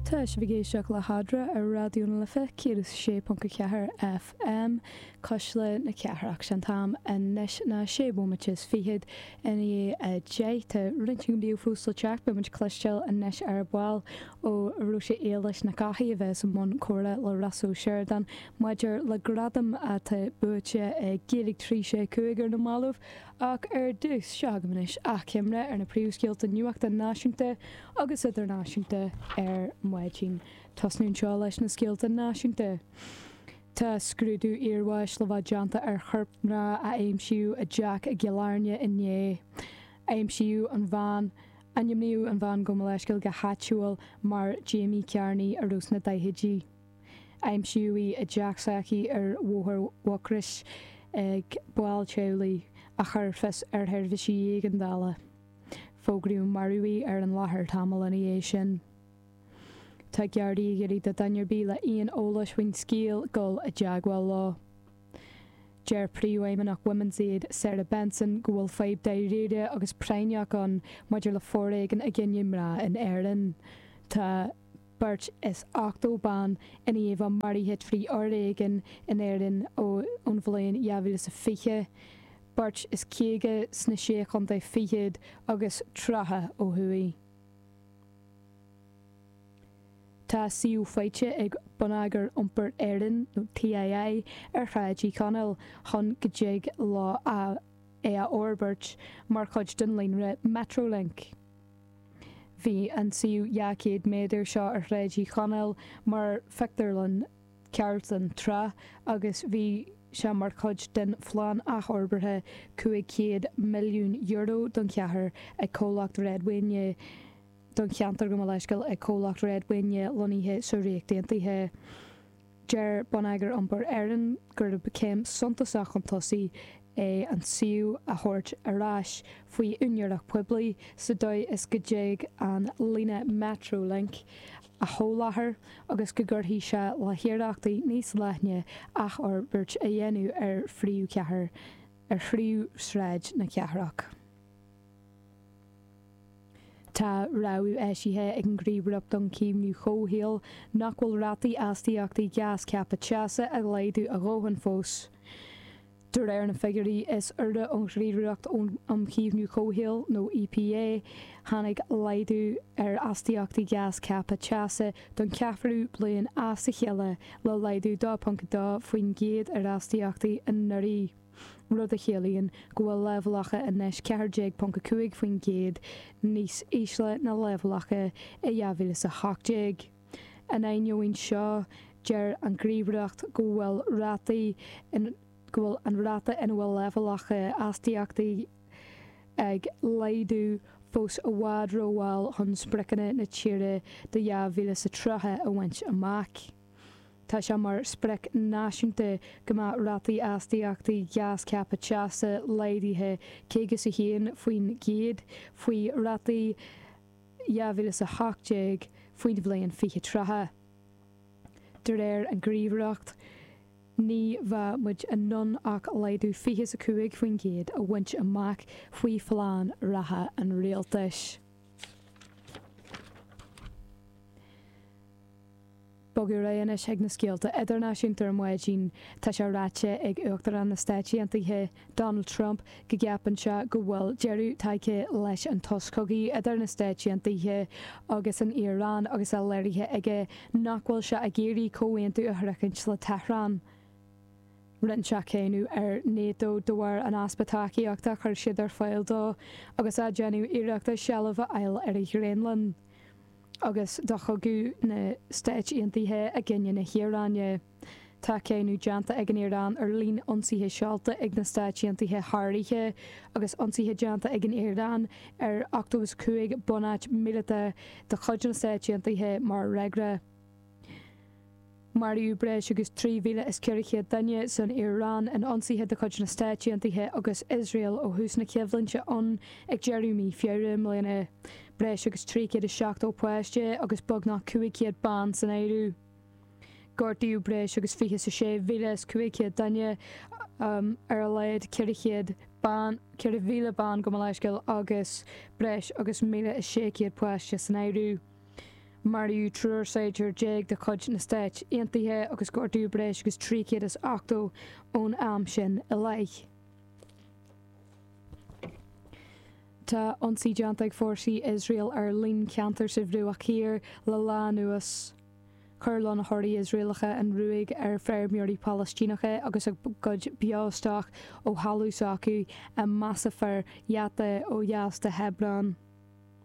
Tá sibh ag éisteacht le hAdhmhaidin ar Raidió na Life 106.4 FM, Cuisle na Cathrach. 'Sé an t-am anois ná sé bhomaite is fichead i ndiaidh a deich. Tá roinnt againn beo fós le teacht. Beidh muid ag cloisteáil anois ar ball ó Róise Éilis Nic Eachaidh a bheas i mbun comhrá le Rossa Ó Seireadáin maidir le gradam atá buaite ag Gaeilge 365 ar na mallaibh Ach ar dtús, seo agaibh anois achoimre ar na príomhscéalta nuachta náisiúnta agus idirnáisiúnta ar maidin. Tosnaím anseo leis na scéalta náisiúnta. Tá scrúdú iarbháis le bheith déanta ar chorp mná a aimsíodh i dteach i gCill Airne inné. Aimsíodh an bhean, ainmníodh an bhean gabh mo leithscéal, go háitiúil mar Jamie Kearney, a bhí sna daichidí. Aimsíodh í i dteach s'aici ar Bhóthar Mhucrois ag baill teaghlaigh a chuir fios ar sheirbhísí éigeandála. Fógraíodh marbh í ar an láthair tamall ina dhiaidh sin. Tá Gardaí ag iarraidh ar dhuine ar bith le aon eolas faoin scéal dul i dteagmháil leo. Deir Príomhfheidhmeannach Women's Aid, Sarah Benson, go bhfuil fadhb dáiríre agus práinneach ann maidir le foréigean i gcoinne mná in Éirinn. Tá. Beirt is ochtó ban san iomlán maraithe trí fhoréigean in Éirinn ón bhliain dhá mhíle is fiche, beirt is caoga sna Sé Chontae Fichead agus tríocha ó thuaidh. Tá suíomh faighte ag Bonneagar Iompair Éireann, nó TII, ar Shráid Uí Chonaill chun go dtig leo é a fhorbairt mar chuid den líonra Metrolink. Bhí an suíomh dhá chéad méadar seo ar Shráid Uí Chonaill mar phictiúrlann Carlton tráth agus bhí sé mar chuid den phlean athfhorbartha €500 milliún don chathair ag Comhlacht Red Wing i don cheantar gabh mo leithscéal ag Comhlacht Red Wing é lonnaithe sa Ríocht Aontaithe. Deir Bonneagar Iompair Éireann gur céim suntasach chun tosaigh é an suíomh a thabhairt ar ais faoi úinéireacht poiblí sa dóigh is go dtig an líne Metrolink a sholáthar agus go gcuirfidh sé le hiarrachtaí níos leithne athfhorbairt a dhéanamh ar phríomhshráid na cathrach. Tá rabhadh eisithe ag an Ghníomhaireacht um Chaomhnú Comhshaoil nach bhfuil rátaí astaíochtaí gás ceaptha teasa ag laghdú a dhóthain fós. De réir na figiúirí is úire ón Ghníomhaireacht um Chaomhnú Comhshaoil, nó EPA, tháinig laghdú ar astaíochtaí gás ceaptha teasa don cheathrú bliain as a chéile, le laghdú 2.2% ar astaíochtaí anuraidh. rud a chiallaíonn go bhfuil leibhéalacha anois 14.5% níos ísle ná leibhéalacha i 2018. In ainneoin seo, deir an Ghníomhaireacht go bhfuil rátaí in, go bhfuil an ráta ina bhfuil leibhéalacha astaíochtaí ag laghdú fós i bhfad rómhall chun spriocanna na tíre do 2030 a bhaint amach. Tá sé mar sprioc náisiúnta go mbeadh rátaí astaíochtaí gás ceaptha teasa laghdaithe 51% faoi rátaí 2018 faoin bhliain 2030. De réir an Ghníomhaireacht, ní bheadh muid in ann ach laghdú fiche 's a cúig faoin gcéad a bhaint amach faoi phlean reatha an rialtais. Bogadh ar aghaidh anois ag na scéalta idirnáisiúnta ar maidin. Tá sé ráite ag Uachtarán na Stáit Aontaithe, Donald Trump, go gceapann sé go bhfuil deireadh tagtha leis an tsos cogaidh idir na Stáit Aontaithe agus an Iaráin agus é léirithe aige nach bhfuil sé ag iarraidh comhaontú a shroichint le Tehran. Rinne sé cáineadh ar Nato de bharr an easpa tacaíochta a chuir siad ar fáil dó agus é ag déanamh iarrachta seilbh a fháil ar an Ghraonlainn. Agus do chogadh na Stáit Aontaithe i gcoinne na hIaráine, tá cáineadh déanta ag an Iaráin ar líon ionsaithe seolta ag na Stáit Aontaithe uirthi agus ionsaithe déanta ag an Iaráin ar 85 bunáit míleata de chuid na Stáit Aontaithe mar fhreagra. Maraíodh breis agus 3,400 duine san Iaráin in ionsaithe de chuid na Stáit Aontaithe agus Iosrael ó thús na coimhlinte ann ag deireadh mhí Feabhra i mbliana, breis agus 370 páiste agus beagnach 500 bean san áireamh. Gortaíodh breis agus 26,500 duine, ar a laghad 400 bean, 4,000 bean gabh mo leithscéal, agus breis agus 1,600 páiste san áireamh. Maraíodh triúr saighdiúir déag de chuid na Stáit Aontaithe agus gortaíodh breis agus 380 ón am sin i leith. Tá ionsaí déanta ag fórsaí Iosrael ar líon ceantar sa Bhruach Thiar le lá anuas. Chuir lonnaitheoirí Iosraelacha an ruaig ar feirmeoirí Palaistíneacha agus a gcuid beostoc ó thalamh s'acu i Masafer Yatta ó dheas de Hebron.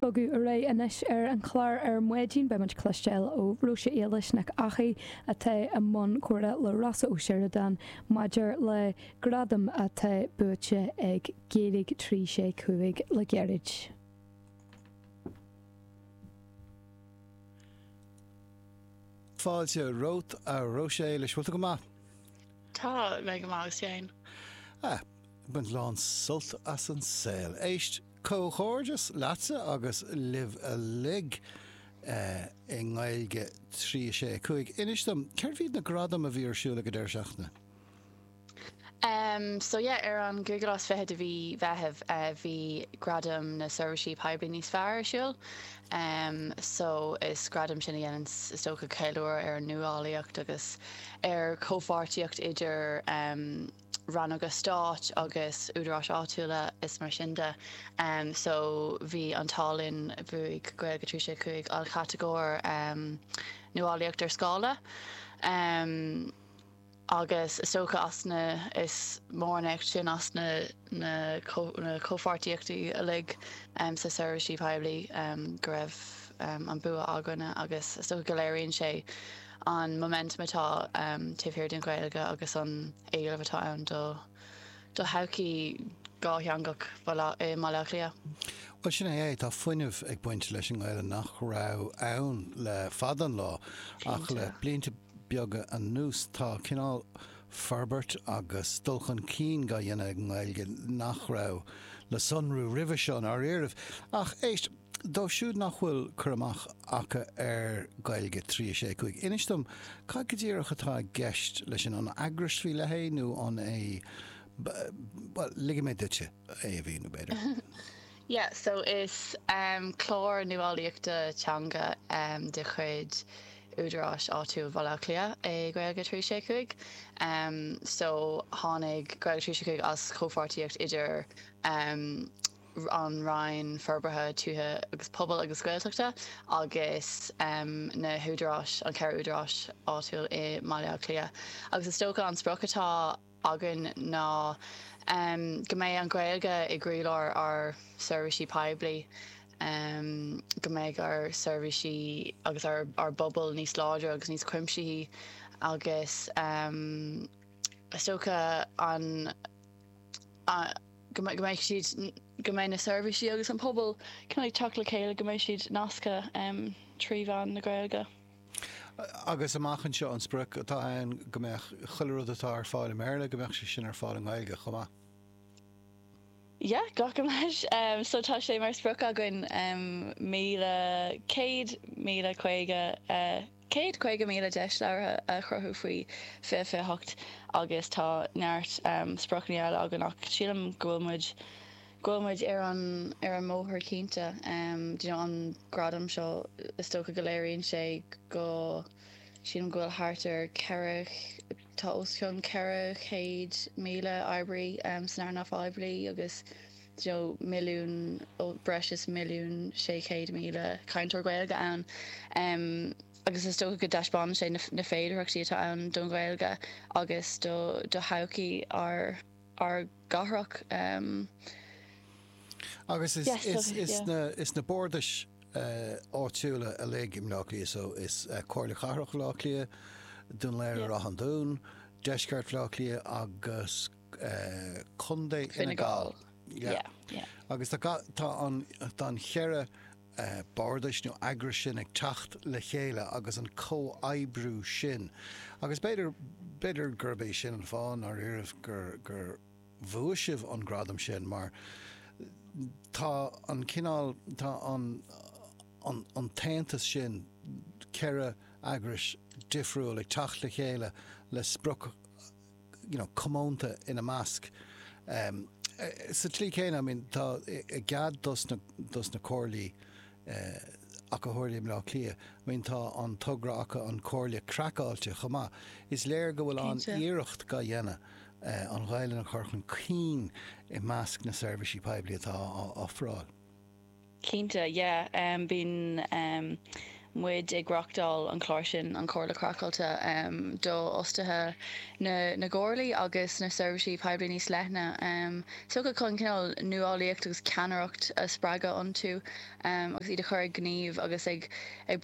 Bogadh muid ar aghaidh anois ar an chlár ar maidin. Beidh muid ag cloisteáil ó Róise Éilis Nic Eachaidh atá i mbun comhrá le Rossa Ó Sioradáin maidir le gradam atá buaite ag Gaeilge 365 le gairid. Fáilte romhat a Róise Éilis, bhfuil tú go maith? Tá mé go maith agus tú féin. Ah, baint lán sult as an saol. Éist, Comhghairdeas leatsa agus libh uilig i nGaeilge 3 6 5. Inis dom, cérbh iad na gradaim a bhí ar siúl ag an deireadh seachtaine? Em so yeah, ar an gcúigiú lá is fiche de mhí Mheithimh eh bhí Gradaim na Seirbhísí Poiblí Níos Fearr ar siúl. Em so is gradaim sin a dhéanann is dócha ceiliúradh ar an nuálaíocht agus ar chomhpháirtíocht idir em, rannóga stáit agus údaráis áitiúla agus mar sin de so bhí an t-ádh linn bhuaigh Gaeilge trí sé cúig an chatagóir nuálaíocht ar scála agus is dócha as na is mór an éacht sin as na na comhpháirtíochtaí uilig sna seirbhísí poiblí go raibh an bua againne agus is dócha go léiríonn sé an momentum atá taobh thiar den Ghaeilge agus an éileamh atá ann do do thodhchaí dhátheangach i mBaile Átha Cliath. Bhuel, sin é é, tá fuinneamh ag baint leis an nGaeilge nach raibh ann le fada an lá ach le blianta beaga anuas tá cineál forbairt agus dul chun cinn dá dhéanamh ag an nGaeilge nach raibh le sonrú roimhe seo, dar liom. Ach éist. Dóibh siúd nach bhfuil cur amach acu ar Ghaeilge 3 6 5, inis dom cad go díreach atá i gceist leis sin. An eagras faoi leith é nó an é Bhuel, ligfidh mé duitse é a mhíniú, b'fhéidir. Yeah, so is um, clár nuálaíochta teanga um, de chuid údaráis áitiúil Bhaile Átha Cliath é Gaeilge trí sé cúig. Um, so tháinig Gaeilge trí sé cúig as chomhpháirtíocht idir um, an Roinn Forbartha Tuaithe agus Pobail agus Gaeltachta agus na húdaráis, an ceithre údaráis áitiúil i mBaile Átha Cliath. Agus is dócha an sprioc atá againn ná go mbeidh an Ghaeilge i gcroílár ár seirbhísí poiblí, go mbeidh ár seirbhísí agus ár bpobail níos láidre agus níos cuimsithí agus is dócha an. go mbeidh siad, go mbeidh na seirbhísí agus an pobal cineál ag teacht le chéile, go mbeidh siad nasctha trí mheán na Gaeilge. Agus amach anseo an sprioc atá ann go mbeadh chuile rud atá ar fáil i mBéarla, go mbeadh sé sin ar fáil i nGaeilge chomh maith? Yeah, glacaim leis. So tá sé mar sprioc againn 1,100, 1,050. 150,000 deis labhartha a chruthú faoi 2028 agus tá neart spriocanna eile againn ach sílim go bhfuil muid, go bhfuil muid ar an, ar an mbóthar cinnte. You know, an gradam seo, is dócha go léiríonn sé go, sílim go bhfuil thart ar ceithre, tá os cionn 400,000 oibrí san earnáil phoiblí agus, ó milliún ó breis is 1,600,000 cainteoir Gaeilge ann agus is dócha go dtaispeánann sé na féidearthachtaí atá ann don Ghaeilge agus do thodhchaí ár gcathrach. Agus is na bardais áitiúla uilig i mBleá Cliath so, is Comhairle Cathrach Bhleá Cliath, Dún Laoghaire, Ráth an Dúin, Deisceart Bhleá Cliath agus. Contae Fhine Gall. Agus tá an cheithre bardais nó eagrais sin ag teacht le chéile agus an comhoibriú sin. Agus b'fhéidir gurb é sin an fáth ndáiríribh gur bhuaigh sibh an gradam sin mar tá an cineál, tá an t-aontas sin, ceithre eagrais difriúil ag teacht le chéile le sprioc, comónta ina measc. Sa tslí chéanna, tá i gcuid dos na comhairlí ach go háirithe i mBleá Cliath, tá an togra acu An Chomhairle Chraiceáilte chomh maith. Is léir go bhfuil an iarracht dhá dhéanamh an Ghaelainn a chur chun cinn i measc na seirbhísí poiblí atá á ofráil. Cinnte, yeah. Bíonn muid ag reáchtáil an chláir sin, An Chomhairle Chraiceáilte, do fhostaithe na gcomhairlí agus na seirbhísí poiblí níos leithne, tugtha chun cineál nuálaíocht agus ceannaireacht a spreagadh iontu agus iad a chur ag gníomh agus ag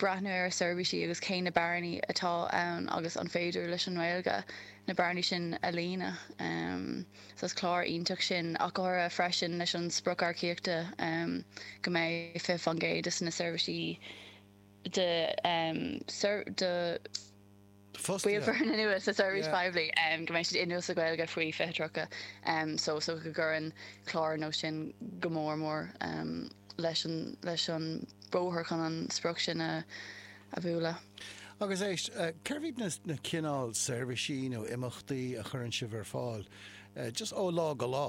breathnú ar a seirbhísí agus cé na bearnaí atá ann agus an féidir leis an nGaeilge na bearnaí sin a líonadh. so is clár iontach sin, ach go háirithe freisin leis an sprioc earcaíochta go mbeidh 20% de na seirbhísí de. Fostaithe. Bhaill foirne nua sa seirbhís Yeah. phoiblí um, go mbeidh siad inniúil sa Ghaeilge faoi 2030 um, so, so go gcuireann clár ar nós sin go mór mór um, leis an, leis an bóthar chun an sprioc sin a a bhualadh. Agus éist, cérbh iad na cineál seirbhísí nó imeachtaí a chuireann sibh ar fáil, just ó lá go lá?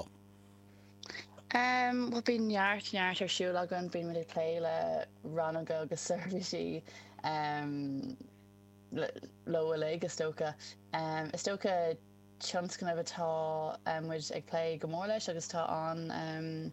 Bhuel, bíonn neart, neart ar siúl againn. Bíonn muid ag plé le rannóga agus seirbhísí uilig, is dócha. Is dócha tionscnamh atá muid ag plé go mór leis agus tá an,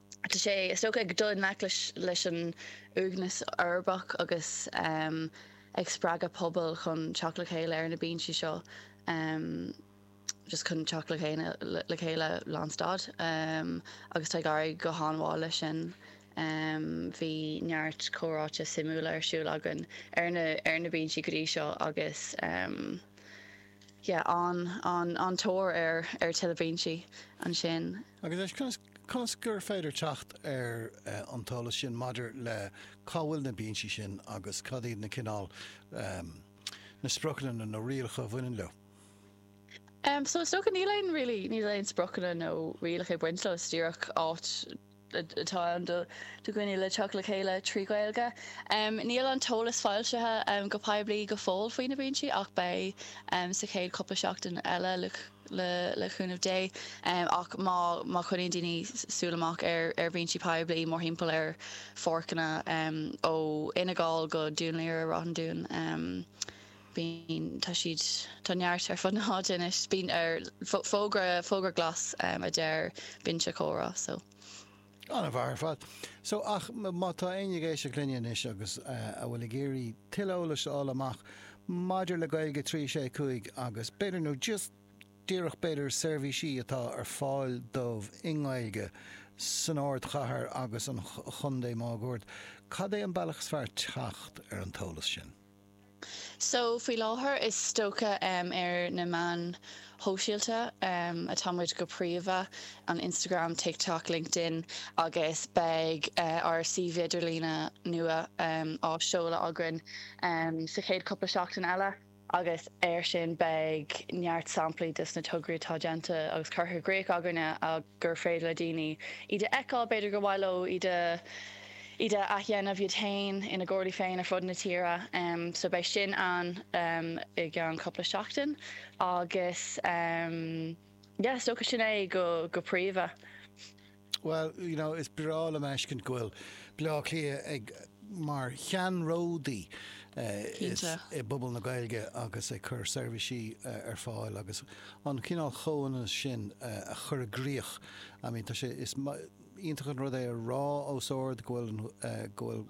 Tá sé, is dócha, ag dul i ngleic leis an uaigneas uirbeach agus ag spreagadh pobail chun teacht le chéile ar na bínsí seo, just chun teacht le chéile lán stad. Agus tá ag éirí go han-mhaith leis sin. Bhí neart comhráite suimiúla ar siúl againn ar na bínsí go dtí seo agus. yeah, an, an, an-tóir ar, ar tuilleadh bínsí ansin. Agus anois, conas, conas gur féidir teacht ar an t-eolas sin maidir le cá bhfuil na bínsí sin agus cad iad na cineál, ehm, na spriocanna nó na rialacha a bhaineann leo? Ehm, so is dócha níl aon, really, níl aon spriocanna nó rialacha ag baint leo, is díreach áit, atá ann do dhaoine le teacht le chéile trí Ghaeilge. Níl an t-eolas foilsithe go poiblí go fóill faoi na bínsí ach beidh sa chéad chúpla seachtain eile le cúnamh Dé. Ach má choinníonn daoine súil amach ar bhínsí poiblí mórthimpeall ar pháirceanna ó Fhine Gall go Dún Laoghaire-Ráth an Dúin, Bíonn, tá siad, tá neart ar fud na háite anois. Bíonn ar, fógra, fógra glas, a deir Binse Comhrá. So. An-mhaith ar fad. So, ach má tá éinne ag éisteacht linne anois agus a bhfuil ag iarraidh tuilleadh eolais a fháil amach maidir le Gaeilge 365 agus b'fhéidir, nó just díreach b'fhéidir seirbhísí atá ar fáil dóibh i nGaeilge san ardchathair agus an chontae máguaird, cad é an bealach is fearr teacht ar an t-eolas sin? So, faoi láthair, is dócha ar na meáin shóisialta atá muid go príomha, ar Instagram, TikTok, LinkedIn, agus beidh ár suíomh idirlíne nua á seoladh againn sa chéad cupla seachtain eile agus air sin beidh neart samplaí dos na tograí atá déanta agus curtha i gcríoch againne gur féidir le daoine iad a fheiceáil, b'fhéidir gur mhaith leo iad a. iad a athdhéanamh iad féin ina gcomhairlí féin ar fud na tíre. So beidh sin ann i gceann cupla seachtain agus yeah, is dócha sin é go príomha. Bhuel, you know, is breá liom a fheiscint go bhfuil Bleá Cliath ag mar cheannródaí i bpobal na Gaeilge agus ag cur seirbhísí ar fáil agus an cineál chomhionannas sin a chur i gcrích. I mean tá sé, is maith, iontach an rud é a rá os ard go bhfuil go bhfuil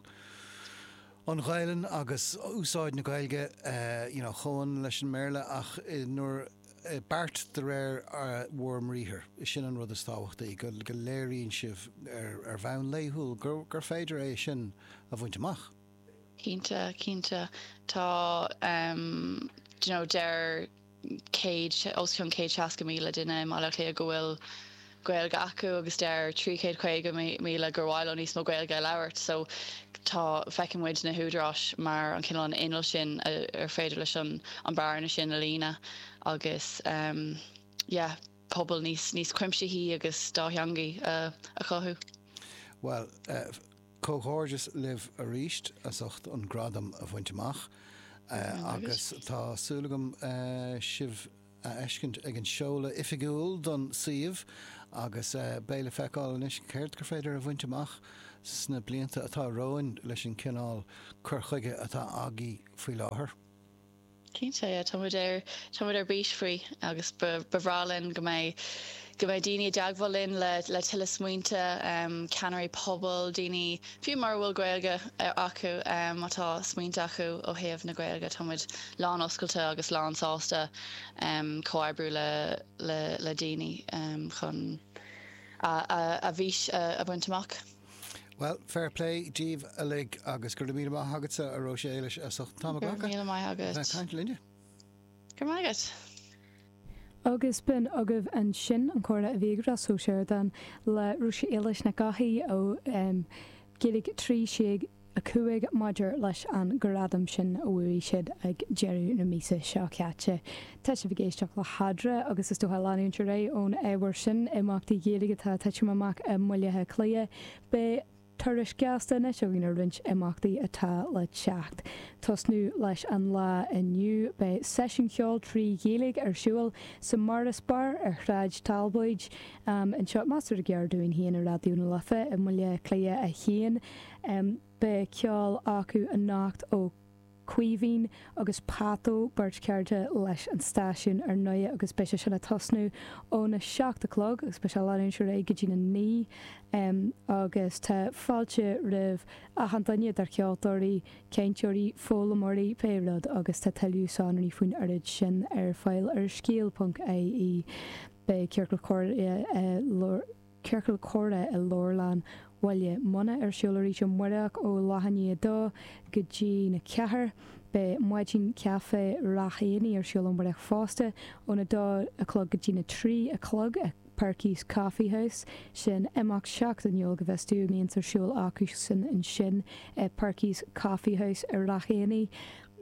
an Ghaelainn agus úsáid na Gaeilge you know comhionann leis an mBéarla ach i ndáiríre beart de réir bhur mbriathar is sin an rud is tábhachtaí go go léiríonn sibh ar ar bhonn laethúil gur gur féidir é sin a bhaint amach. Cinnte cinnte tá ehm you know deir 100, os cionn 100 seasca míle duine i mBaile Átha Cliath go bhfuil Gaeilge acu agus deir 350 míle gur mhaith leo níos mó Gaeilge a labhairt. So tá feiceann muid na húdaráis mar an cineál an inneall sin ar féidir leis an an bearna sin a líonadh agus um yeah, pobal níos níos cuimsithí agus dátheangaí a a chothú. Bhuel, eh, Comhghairdeas libh aríst as ucht an gradam a bhaint amach agus tá súil agam sibh a fheiscint ag an seoladh oifigiúil don suíomh agus beidh le feiceáil anois céard gur féidir a bhaint amach sna blianta atá romhainn leis an cineál cur chuige atá agaibh faoi láthair. Cinnte, tá muid ar, tá muid ar bís faoi agus ba, ba bhreá linn go mbeidh go mbeidh daoine i dteagmháil linn le, le tuilleadh smaointe, um, ceannairí pobail, daoine fiú mura bhfuil Gaeilge acu, um, má tá smaointe acu ó thaobh na Gaeilge, tá muid lán-oscailte agus lán-sásta um, comhoibriú le, le, le daoine um, chun a, a, a bhfís a, a bhaint amach. Bhuel, fair play díbh uilig agus go raibh míle maith agatsa a Róise Éilis as ucht an t-am. Go raibh míle maith agat. Bheith caint linne. Go raibh maith agat. Agus b'in agaibh ansin an comhrá a bhí ag Ross Ó Sioradáin le Róise Éilis Nic Eachaidh ó Gaeilge trí sé 5 maidir leis an gradam sin a bhuaigh siad ag deireadh na míosa seo caite. Tá sibh ag éisteacht le hEadra agus is dócha, leanúint ar aghaidh ón ábhar sin, imeachtaí Gaeilge atá ag titim amach i mBaile Átha Cliath. Beidh turas gasta anois againn ar roinnt imeachtaí atá le teacht. tosnú leis an lá inniu, beidh seisiún ceoil trí Ghaeilge ar siúl sa Morris Bar ar Shráid Talbóid. Anseo, measartha gar dúinn féin i Raidió na Life i mBaile Átha Cliath 1. Beidh ceol acu anocht ó Chaoimhín agus Pato, beirt chairde leis an stáisiún ar ndóigh, agus beidh sé sin ag tosnú óna seacht a chlog agus beidh sé ag leanúint ar aghaidh go dtí'n a naoi agus tá fáilte roimh achan duine idir cheoltóirí, cainteoirí, foghlaimeoirí, pé rud agus tá tuilleadh sonraí faoin oiread sin ar fáil ar scéal.ie. Beidh Ciorcal Comhrá i. Ciorcal Comhrá i Leabharlann Bhaile Munna ar siúl arís amárach ó leath i ndiaidh a 2 go dtí'n 4. Beidh Maidin Caife Ráth Eanaigh ar siúl amárach fosta, ón 2 a chlog go dtí'n 3 a chlog, i Perky's Coffee House. Sin imeacht seachtainiúil, go bhfios dúinn, a mbíonns ar siúl acusan ansin i Perky's Coffee House i Ráth Eanaigh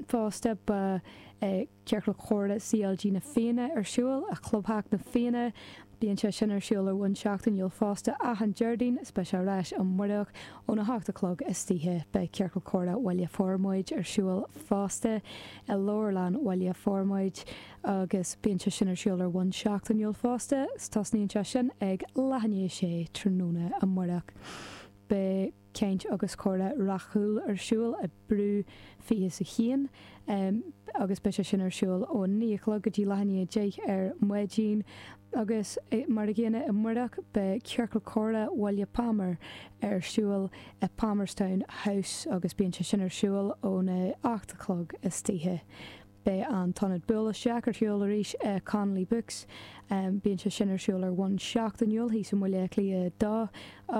fosta. Beidh. Ciorcal Comhrá CLG na Fianna ar siúl, i gClubtheach na Fianna. Bíonn sé sin ar siúl ar bhonn seachtainiúil fosta, achan Déardaoin is beidh sé ar ais amárach ón 8 a chlog istoíche. Beidh Ciorcal Comhrá Bhaile Formaid ar siúl fosta i Leabharlann Bhaile Formaid agus bíonn sé sin ar siúl ar bhonn seachtainiúil fosta is tosaíonn sé sin ag leath i ndiaidh a sé tráthnóna amárach. Beidh. caint agus comhrá Ráth Cúil ar siúl i Brew 21 agus beidh sé sin ar siúl ó 9 a chlog go dtí leath i ndiaidh a deich ar maidin. Agus mar an gcéanna amárach beidh Ciorcal Comhrá Bhaile Phámar ar siúl i Palmerstown House agus bíonn sé sin ar siúl óna hocht a chlog istoíche. Beidh an t-ionad buail isteach ar siúl arís i Connolly Books. Bíonn sé sin ar siúl ar bhonn seachtainiúil thíos i mBaile Átha Cliath 2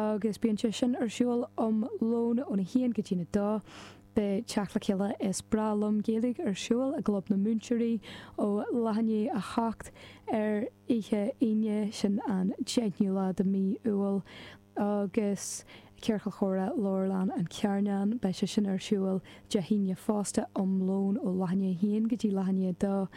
agus bíonn sé sin ar siúl am lóin óna haon go dtí'n a dó. Beidh teacht le chéile Is Breá Liom Gaeilge ar siúl i gClub na Múinteoirí ó leath i ndiaidh a hocht ar oíche Aoine, sin an deichniú lá de mhí Iúil. Agus Ciorcal Chomhrá Leabharlann an Charnáin, beidh sé sin ar siúl Dé hAoine fosta, am lóin ó leath i ndiaidh 1 go dtí leath i ndiaidh 2.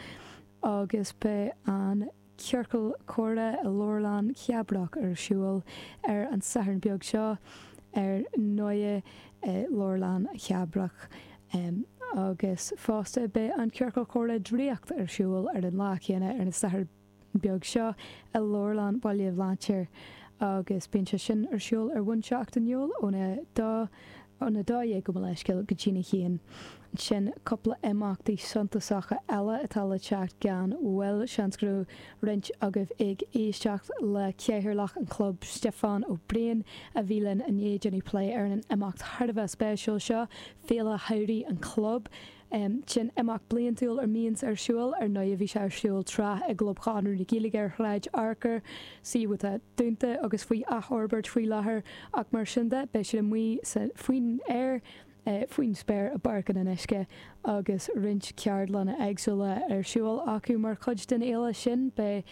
Agus beidh an Ciorcal Comhrá i Leabharlann Chabrach ar siúl ar an Satharn beag seo, ar ndóigh, i Leabharlann Chabrach. Agus fosta beidh an Ciorcal Comhrá Draíocht ar siúl ar an lá céanna, ar an Satharn. beag seo i Leabharlann Bhaile Bhlainséir agus bíonn sé sin ar siúl ar bhonn seachtainiúil óna, ón 12, gabh mo leithscéal go dtína haon. Sin cúpla imeachtaí suntasacha eile atá le teacht gan mhoill. Seans go raibh roinnt agaibh ag éisteacht le Cathaoirleach an Chlub, Stiofán Ó Briain, a bhí linn inné ag déanamh plé ar an imeacht thar a bheith spéisiúil seo, Féile Shamhraidh an Chlub, Sin imeacht bliantúil a mbíonns ar siúl, ar ndóigh bhí sé ar siúl tráth i gClub Chonradh na Gaeilge ar Shráid Fhearcair, suíomh atá dúnta agus faoi athfhorbairt faoi láthair, ach mar sin de beidh siad amuigh faoin aer, faoin spéir, i bPáirc an Fhionnuisce agus roinnt ceardlanna éagsúla ar siúl acu mar chuid den fhéile sin. Beidh.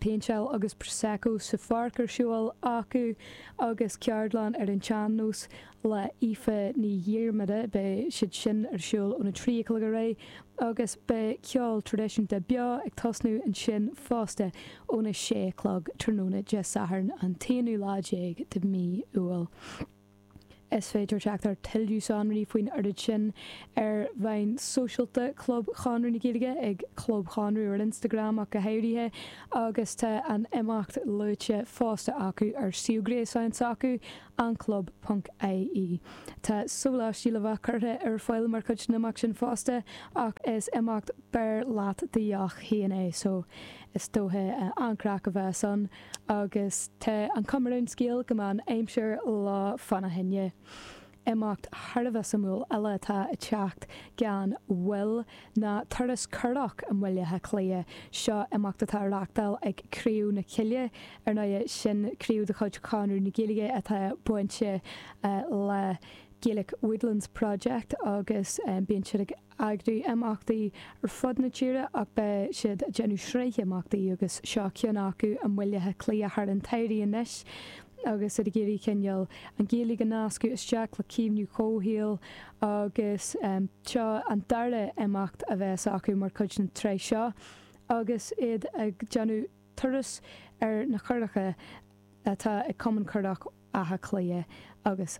péinteáil agus Prosecco sa pháirc ar siúl acu agus ceardlann ar an tsean-nós le hAoife Ní Dhiarmada, beidh siad sin ar siúl óna trí a chlog ar aghaidh agus beidh ceol traidisiúnta beo ag tosnú ansin fosta óna sé a chlog tráthnóna Dé Sathairn an t-aonú lá déag de mhí Iúil. Is féidir teacht ar tuilleadh sonraí faoin oiread sin ar mheáin sóisialta Chlub Chonradh na Gaeilge, ag Club Chonradh ar Instagram ach go háirithe, agus tá an imeacht luaite fosta acu ar suíomh gréasáin s'acu, anclub ponc ie. Tá sóláistí le bheith curtha ar fáil mar chuid den imeacht sin fosta ach is imeacht beir leat do dheoch féin é so is dóiche an-chraic a bheas ann. Agus tá an chuma ar an scéal go mbeidh an aimsir lofa ina thine. Imeacht thar a bheith suimiúil eile atá ag teacht gan mhoill ná turas curach i mBaile Átha Cliath. Seo imeacht atá á reachtáil ag Craobh na Coille, ar ndóighe, sin craobh de chuid Chonradh na Gaeilge atá bainte le Gaelic Woodlands Project agus bíonn siad ag eagrú imeachtaí ar fud na tíre ach beidh siad ag déanamh sraith imeachtaí agus seo ceann acu i mBaile Átha Cliath thar an tsamhradh anois agus iad ag iarraidh cineál an Ghaeilge a nascadh isteach le caomhnú comhshaoil agus seo an dara imeacht a bheas acu mar chuid den tsraith seo agus iad ag déanamh turas ar na curacha atá ag Cumann Curach Átha Cliath agus.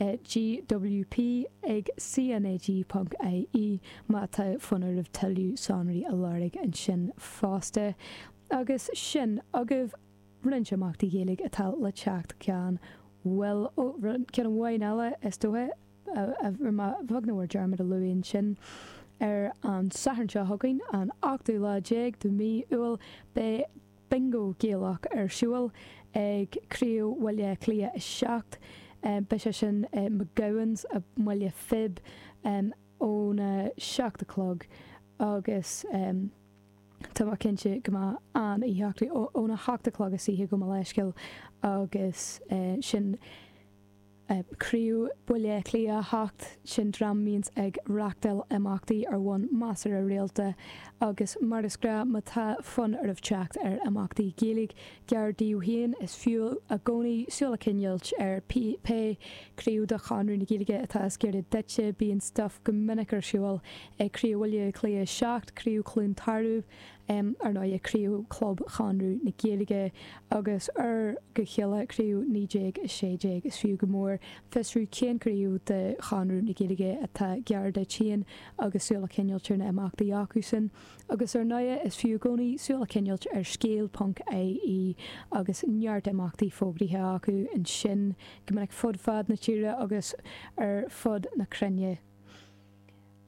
GWP ag CNAG ponc ie má tá fonn oraibh tuilleadh sonraí a lorg ansin fosta. Agus sin agaibh, roinnt imeachtaí Gaeilge atá le teacht ceann ó ceann amháin eile is dóiche, ba bheag nár dearmad a luadh ansin, ar an Satharn seo chugainn, an 18ú lá de mhí Iúil, beidh Bingo Gaelach ar siúl ag Craobh Bhaile Átha Cliath 7. Beidh sé sin i McGowan's i mBaile Phib ón 7 a chlog agus tá mé cinnte go mbeidh an-oíche acu. Ón 8 a chlog san oíche gabh mo leithscéal, agus sin. Craobh Bhaile Átha Cliath 7 sin dream a bhíonns ag reachtáil imeachtaí ar bhonn measartha rialta agus mar is gnách má tá fonn oraibh teacht ar imeachtaí Gaeilge gar daoibh féin is fiú i gcónaí súil a choinneáilt ar pé craobh de Chonradh na Gaeilge atá is giorra duitse bíonn stuif go minic ar siúl ag Craobh Bhaile Átha Cliath 7 Craobh Chluain Tarbh em ar ndóigh craobh club Chonradh na Gaeilge agus ar go chéile craobh 1916 is fiú go mór fiosrú cén craobh de Chonradh na Gaeilge atá gar duit féin agus súil a choinneáil ar na imeachtaí acusan agus ar ndóigh is fiú i gcónaí súil a choinneáil ar scéal ponc ie agus neart imeachtaí fógraithe acu ansin go minic fud fad na tíre agus ar fud na cruinne.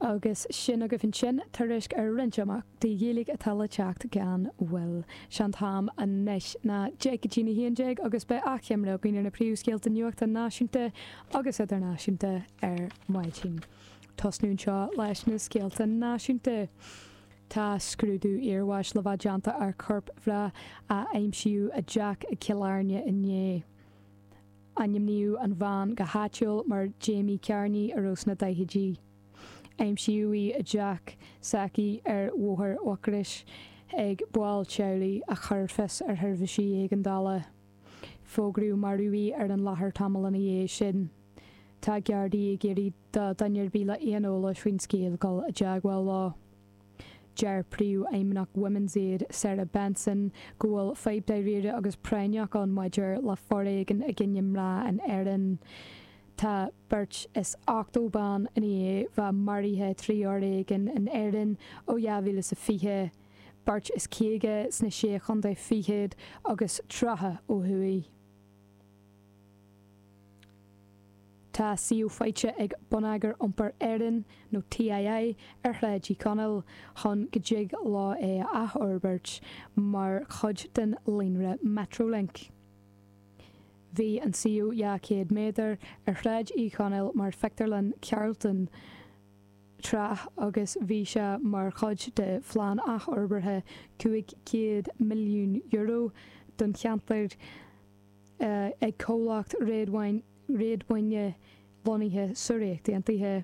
Agus sin agaibh ansin tuairisc ar roinnt imeachtaí Gaeilge atá le teacht gan mhoill. Sé an t-am anois, ná deich go dtí'n 11 agus beidh achoimre againn ar na príomhscéalta nuachta náisiúnta agus idirnáisiúnta ar maidin. Tosnóm anseo leis na scéalta náisiúnta. Tá scrúdú iarbháis le bheith déanta ar chorp mná a aimsíodh i dteach i gCill Airne inné. Ainmníodh an bhean go háitiúil mar Jamie Carney a raibh sna daichidí. Aimsíodh í i dteach s'aici ar Bhóthar Mhucrois ag baill teaghlaigh a chuir fios ar sheirbhísí éigeandála. Fógraíodh marbh í ar an láthair tamall ina dhiaidh sin. Tá Gardaí ag iarraidh do duine ar bith le haon eolas faoin scéal dul i dteagmháil leo. Deir Príomhfheidhmeannach Women's Aid, Sarah Benson, go bhfuil fadhb dáiríre agus práinneach ann maidir le foréigean i gcoinne mná in Éirinn. Tá beirt is ochtó ban i ndiaidh bheith maraithe trí fhoréigean in Éirinn ó 2020, beirt is caoga sna Sé Chontae Fichead agus tríocha ó thuaidh. Tá suíomh faighte ag Bonneagar Iompair Éireann, nó TII, ar Shráid Uí Chonaill chun go dtig leo é a athfhorbairt mar chuid den líonra Metrolink. Bhí an suíomh 200 méadar ar Shráid Uí Chonaill mar phictiúrlann Carlton tráth agus bhí sé mar chuid de phlean athfhorbartha €500 milliún don cheantar ag comhlacht réadmhaoine lonnaithe sa Ríocht Aontaithe.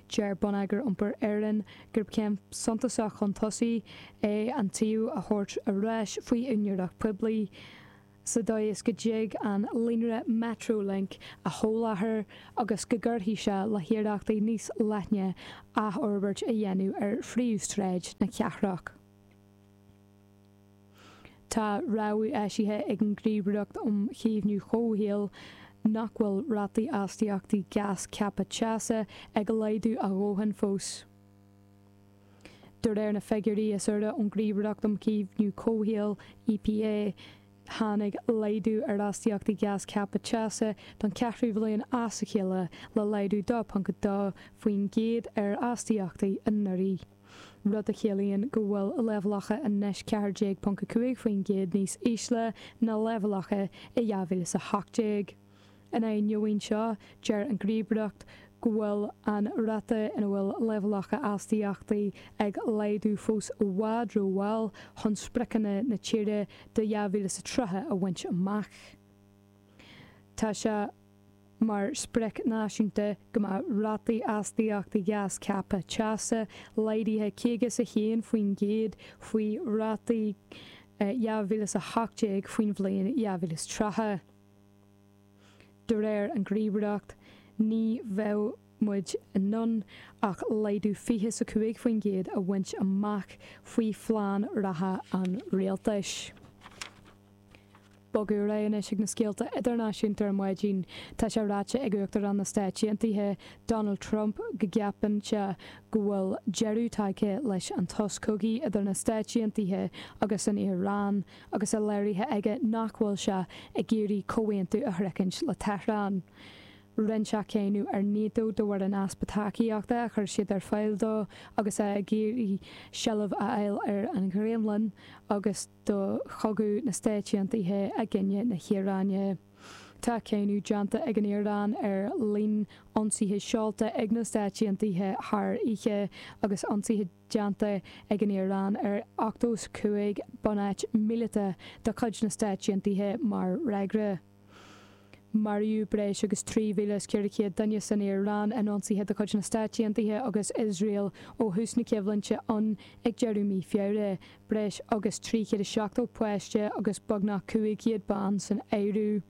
Deir Bonneagar Iompair Éireann gurb céim suntasach chun tosaigh é an suíomh a thabhairt ar ais faoi úinéireacht poiblí, sa dóigh is go dtig an líonra Metrolink a sholáthar agus go gcuirfidh sé le hiarrachtaí níos leithne athfhorbairt a dhéanamh ar phríomhshráid na cathrach. Tá rabhadh eisithe ag an nGníomhaireacht um Chaomhnú Comhshaoil nach bhfuil rátaí astaíochtaí gás ceaptha teasa ag laghdú a dhóthain fós. De réir na figiúirí is úire ón Ghníomhaireacht um Chaomhnú Comhshaoil, EPA, tháinig laghdú ar astaíochtaí gás ceaptha teasa don cheathrú bhliain as a chéile, le laghdú 2.2% ar astaíochtaí anuraidh. rud a chiallaíonn go bhfuil leibhéalacha anois 14.5% níos ísle ná leibhéalacha i 2018. In ainneoin seo, deir an Ghníomhaireacht go bhfuil an ráta ina bhfuil leibhéalacha astaíochtaí ag laghdú fós i bhfad rómhall chun spriocanna na tíre do 2030 a bhaint amach. Tá sé. mar sprioc náisiúnta go mbeadh rátaí astaíochta gás ceaptha teasa laghdaithe 51% faoi rátaí 2018 faoin bhliain 2030. De réir an Ghníomhaireacht, ní bheidh muid in ann ach laghdú fiche is a cúig faoin gcéad a bhaint amach faoi phlean reatha an rialtais. Ag bogadh ar aghaidh anois ag na scéalta idirnáisiúnta ar maidin. Tá sé ráite ag Uachtarán na Stáit Aontaithe, Donald Trump, go gceapann sé go bhfuil deireadh tagtha leis an tsos cogaidh idir na Stáit Aontaithe agus an Iaráin agus é léirithe aige nach bhfuil sé ag iarraidh comhaontú a shroichint le Tehran. Rinne sé cáineadh ar Nato de bharr an easpa tacaíochta a chuir siad ar fáil dó agus é ag iarraidh seilbh a fháil ar an Ghraonlainn agus do chogadh na Stáit Aontaithe i gcoinne na hIaráine. Tá cáineadh déanta ag an Iaráin ar líon ionsaithe seolta ag na Stáit Aontaithe thar oíche agus ionsaithe déanta ag an Iaráin ar ochtó is a cúig bunáit míleata de chuid na Stáit Aontaithe mar fhreagra. Maraíodh breis agus 3,400 duine san Iaráin in ionsaithe de chuid na Stáit Aontaithe agus Iosrael ó thús na coimhlinte ann ag deireadh mí Feabhra, breis agus 370 páiste agus beagnach 500 bean san áireamh.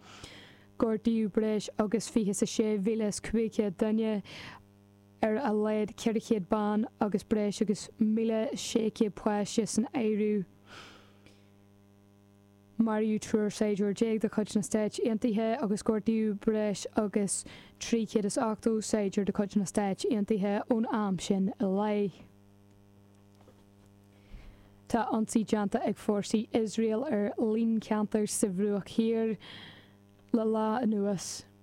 Gortaíodh breis agus fiche is a sé mhíle is cúig chéad duine, ar a laghad 400 bean agus breis agus míle sé chéad páiste san áireamh. Maraíodh triúr saighdiúir déag de chuid na Stáit Aontaithe agus gortaíodh breis agus 380 saighdiúir de chuid na Stáit Aontaithe ón am sin i leith. Tá ionsaithe déanta ag fórsaí Iosrael ar líon ceantar sa Bhruach Thiar le lá anuas.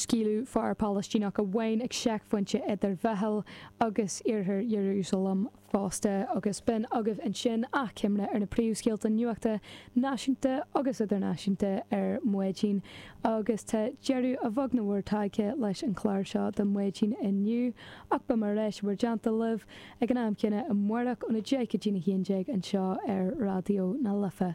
Scaoileadh fear Palaistíneach amháin ag seicphointe idir Bheithil agus iarthar Iarúsailéim fosta agus b'in agaibh ansin achoimre ar na príomhscéalta nuachta náisiúnta agus idirnáisiúnta ar maidin agus tá deireadh a bheag nó a mhór tagtha leis an chlár seo de Maidin inniu ach beimid ar ais i bhur dteannta libh ag an am céanna amárach óna deich go dtí'n a haon déag anseo ar Raidió na Life.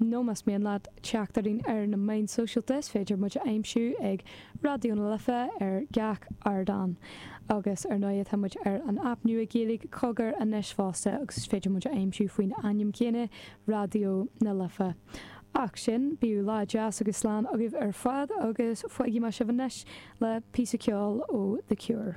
nó más mian leat teacht orainn ar na meáin sóisialta is féidir muid a aimsiú ag Raidió na Life ar gach ardán. Agus ar ndóigh tá muid ar an aip nua Gaeilge, Cogar, anois fosta agus is féidir muid a aimsiú faoin ainm céanna, Raidió na Life. Ach sin, bíodh lá deas agus slán agaibh ar fad agus fágfaimid sibh anois le píosa ceoil ó The Cure.